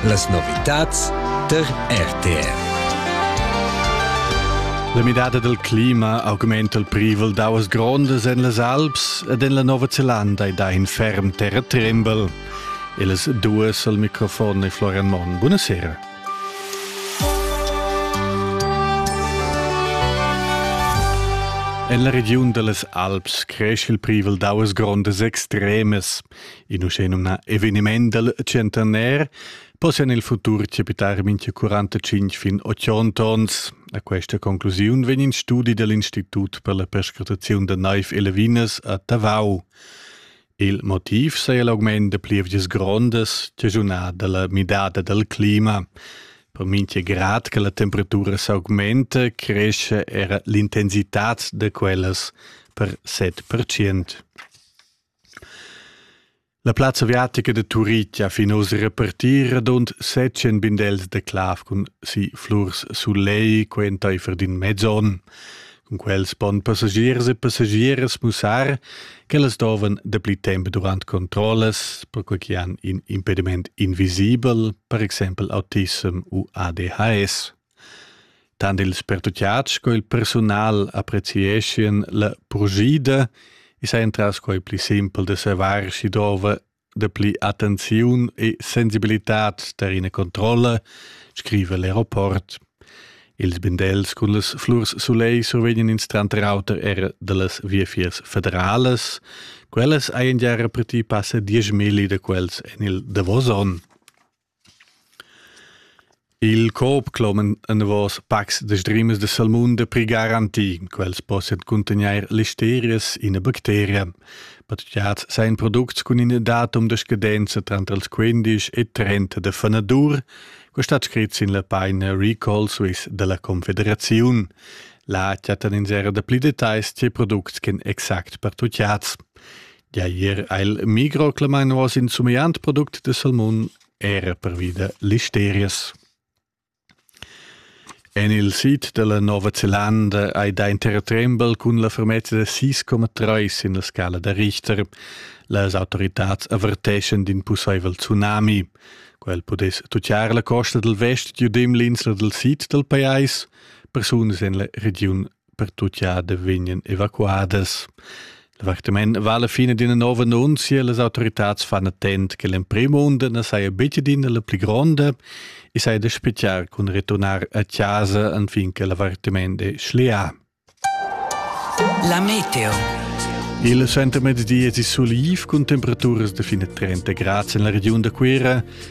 Las novitads der RTR. La midada dal clima augmenta il privel d'auas grondas en las Alps ed en la Nova Zelanda e dà in ferm terratrembel. E las duas al microfon è Florian Monn. Buonasera. En la regiun da las Alps cresce il privel d'auas grondas extremas. In uschenumnà eveniment dal centenair possian nel futur capitar mincha 45 fin 80 ons. A questa conclusiun vegn in studi dell'Institut per la perscrutaziun da naiv e lavinas a Tavau. Il motiv saja l'augment da plievgias grondas cagiunà dalla midada dal clima. Per mincha grad che la temperatura s'augmenta, cresce era l'intensità da quellas per 7%. La plazza aviatica da Turitg ha fin oz repartì radund setschen bindels da clav cun si flurs sulei quentaifer d'in mez onn. Cun quels pon passagiers e passagieras mussar ch'ellas dovan dapli temp durant controllas, perquai che han in impediment invisibel, per exempel autism u ADHS. Tant ils pertutgads sco il persunal apprezieschien la purschida e sajan tras quai pli simpel da savair sch'i dovra dapli attenziun e sensibilitad tar ina controlla, scriva l'aeroport. Ils bindels cun las flurs sulegl survegnan ins tranter auter era da las viafiers federalas. Quellas hajan gia repetì passa dieschmilli da quels en il davos onn. Il coop cloman enavos pacs da sdrimas da salmun da prigar antin. Quels possian cuntegnair listerias, ina bacteria. Patgiads sajan products cun ina datum da scadenza tranter ils 15 e 30 da fanadur. Quest stat scrit sin la paina Recall Swiss da la Confederaziun. Là chattan ins era da pli detagls tge products ch'en exact per tutgiads. Gia ier ha il Migro clamà nuos in sumegliant product de salmun era pervi da listerias. En il sid della Nova Zelanda hai da intertrembel cun la fermezza de 6,3 sin la scala da Richter. Las autoritats averteschan d'in pusseivel tsunami. Quel pudess tucciar la costa del vest giudim l'insla del sid del pajais, persunas en la regiun pertucciadas vegnan evacuadas. L'activament va alla fine d'ina nova annunzia, las autorità fanno attent che l'emprim monde non saja bitte d'ina la pli gronda e saja da speziar con ritornare a casa anfinché l'avvertiment è schlià. La meteo. Il centro mezdi è sul Iv con temperaturas da fine 30 gradi in la regione da Cuira